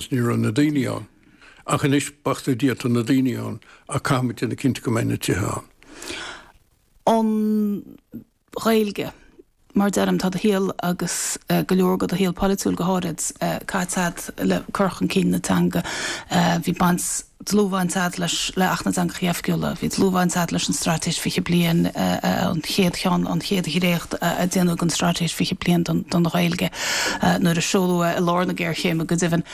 's ní raibh na daoine ann. Ach anois b'fhéidir go bhfuil, tá na daoine ann, ach caithfimid déanamh cinnte go mbeidh na tithe ann. Ón Ghaeilge. Mar a deirim, tá do shaol agus go leor de do shaol polaitiúil go háirid caite agat le cur chun cinn na teanga. Bhí baint. dlúthbhaint agat leis le Acht na dTeangachaí Oifigiúla, bhí dlúthbhaint agat leis an Straitéis 20 Bliain, an chéad cheann, an chéad dhréacht a déanadh den Straitéis 20 Bliain don Ghaeilge nuair a seoladh é i lár na géarchéime go deimhin.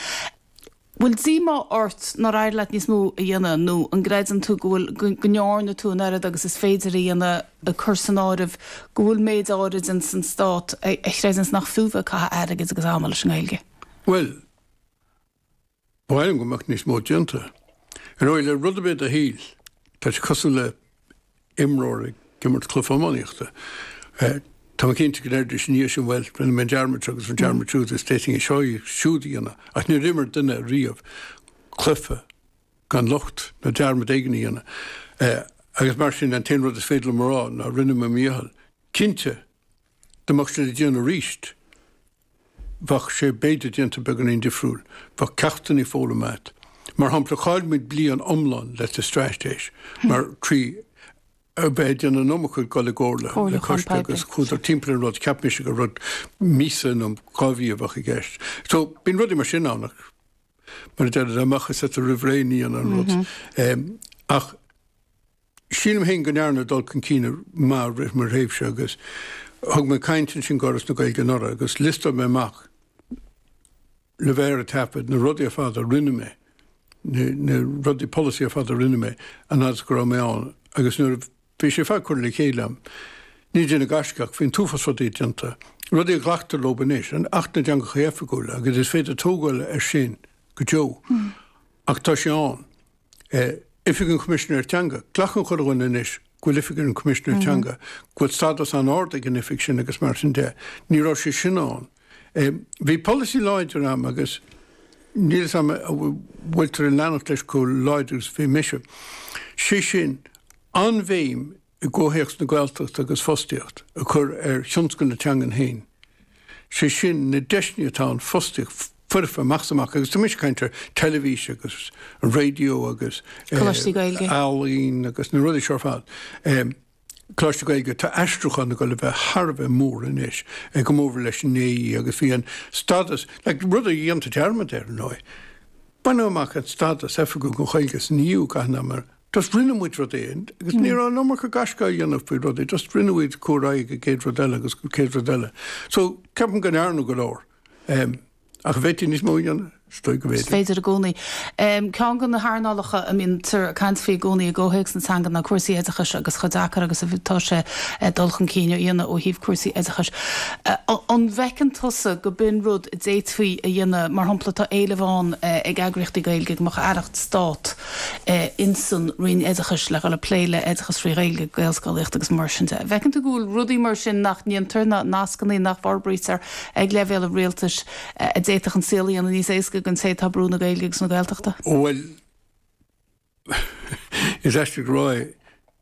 An bhfuil díomá ort nár éirigh leat níos mó a dhéanamh nó an gcreideann tú go bhfuil, go ndearna tú an oiread agus is féidir a dhéanamh, ag cur san áireamh go bhfuil méid áirid dhe sa Stát a chreideanns nach fiú bheith ag caitheamh airgid agus ama leis an nGaeilge? Bhuel, Ba mhaith liom go mbeadh níos mó déanta. Ar ndóigh, le rud ar bith dá shaol, tá sé cosúil le imreoir ag imirt cluiche iománaíochta. Tá mé cinnte go ndéarfaidís ina dhiaidh sin, bhuel, rinne mé an dearmad seo agus an dearmad siúd, is d'fhéadfainn é seo siúd a dhéanamh, ach níor imir duine riamh cluiche gan locht nó dearmad éigin a dhéanamh. Agus mar sin, an t-aon rud is féidir liom a rá ná, rinne mé mo dhícheall. Cinnte, dá mbeadh sin le déanamh arís, bheadh sé b'fhéidir déanta beagáinín difriúil, bheadh ceachtannaí foghlamtha agat. Mar shampla, chaill muid bliain iomlán le i dtaobh straitéis, mar trí a bheith ag déanamh an iomarca ag dul i gcomhairle le coiste agus chuadar timpeall an rud, cheap mise gur rud míosa nó dhá mhí a bheadh i gceist. So, bíonn rudaí mar sin ann ach mar a deir, dá mbeadh a fhios agat roimh ré ní dhéanfá an rud. Ach. Sílim féin go ndearnadh dul chun cinn maith i rith mo thréimhse agus thug mé caint ansin do Fhoras na Gaeilge anuraidh agus liostáil mé amach le bheith ar an taifead na rudaí ar fad a rinne mé, na rudaí polasaí ar fad a rinne mé an fhad is go raibh mé ann agus nuair a bhí sé ar fad curtha le chéile agam, ní déanamh gaisce ach bhí an t-uafás rudaí déanta, rudaí a ghlactar leo anois, an Acht na dTeangacha Oifigiúla agus is féidir tógáil air sin go deo ach tá sé ann. Oifig an Choimisinéir Teanga. Glacann chuile dhuine anois go bhfuil Oifig an Choimisinéir Teanga, go bhfuil stádas an-ard ag an oifig sin agus mar sin de. Ní raibh sé sin ann. Bhí polasaí láidir ann agus níl a fhios agam an bhfuiltear ag leanacht leis chomh láidir agus a bhí mise. Sé sin, an-bhéim i gcomhthéacs na Gaeltachta agus fostaíocht a chur ar thionscal na teangan féin, sé sin na deiseanna atá ann fostaíocht foirfe amach is amach, agus tá mise ag caint ar teilibhís agus an raidió agus ealaín agus na rudaí seo ar fad. Coláiste Gaeilge, tá aistriúchán ag dul a bheith thar a bheith mór anois go mórmhór leis an AE agus bhí an stádas eile rud a dhéantar dearmad air, ar ndóigh. Baineadh amach an stádas oifigiúil don Ghaeilge san EU gan ná mar Just rinne muid rud éigin agus ní raibh an iomarca gaisce á dhéanamh faoi rudaí, just rinne muid ar aghaidh go dtí an chéad rud eile agus an chéad rud eile. So, ceapaim go ndearnadh go leor. Em, ach a bhféadfaí níos mó a dhéanamh? Is dóigh go bhféadfaí. Is féidir i gcónaí. Em, ceann de na hearnálacha a mbíonn tú ag caint faoi i gcónaí i gcomhthéacs na teanga ná cúrsaí oideachais agus chomh deacair agus a bhí, tá sé dul chun cinn a dhéanamh ó thaobh cúrsaí oideachais. Eh, an bhfeiceann tusa go mbíonn rud a d'fhéadfaí a dhéanamh, mar shampla tá éileamh ann eh, ag eagraíochtaí Gaeilge go mbeadh aireacht stáit, ins an Roinn Oideachais le dhul ag plé le oideachas trí Ghaeilge, Gaelscolaíocht agus mar sin de. An bhfeiceann tú go bhfuil rudaí mar sin nach ndéantar, nó nascannaí nach bhforbraítear ag leibhéal an Rialtais a d'fhéadfadh an saol a dhéanamh níos éascaí don té atá ag brú na Gaeilge agus na Gaeltachta? Bhuel, is aisteach le rá é,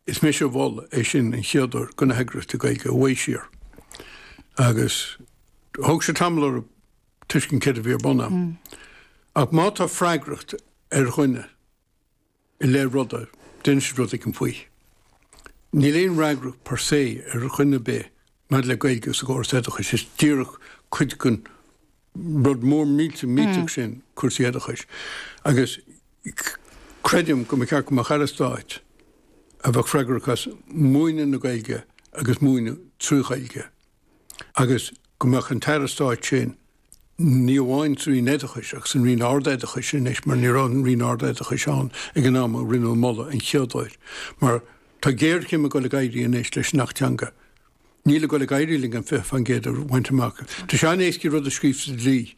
is mise a mhol é sin an chéad uair do na heagraíochtaí Gaeilge i bhfad siar agus thóg sé tamall orthu tuiscint céard a bhí ar bun ann. Ach má tá freagracht ar dhuine i leith ruda, déanann siad rud éigin faoi. Níl aon fhreagracht per se ar dhuine ar bith maidir le Gaeilge sa gcóras oideachais, is díreach cuid den rud mór millteach millteach sin cúrsaí oideachais. Agus creidim go mba cheart go mbeadh Aire Stáit a bheadh freagrach as múineadh na Gaeilge agus múineadh trí Ghaeilge. agus go mbeadh an tAire Stáit sin, ní amháin sa Roinn Oideachais ach san Roinn Ard-Oideachais anois, mar ní raibh an Roinn Ard-Oideachais ann ag an am a rinneadh an moladh an chéad uair, mar tá géarchéim ag dul ag éirí anois leis an Acht Teanga. Níl sé ag dul ag éirí linn an 20% a bhaint amach. Tá sé an-éascaí rud a scríobh sa dlí,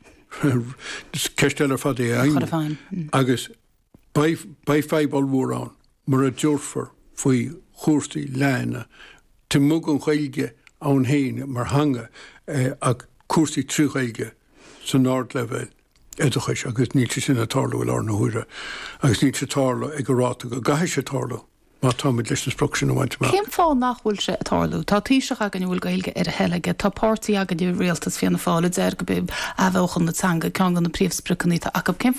ceist eile ar fad é a fheidhmiú. Agus. Beidh fadhb ollmhór ann mura dtabharfar faoi chúrsaí léinn ní amháin an Ghaeilge ann féin mar theanga ach cúrsaí trí Ghaeilge san ardleibhéal oideachais agus níl sé sin ag tarlú i láthair na huaire agus níl sé ag tarlú ag an ráta go gcaithfidh sé tarlú má táimid leis an sprioc sin a bhaint amach. Cén fáth nach bhfuil sé ag tarlú? Tá Taoiseach againn a bhfuil Gaeilge ar a thoil aige, tá páirtí againn i rialtas, Fianna Fáil, a deir go b'í athbheochan na teanga ceann de na príomhspriocanna atá acu.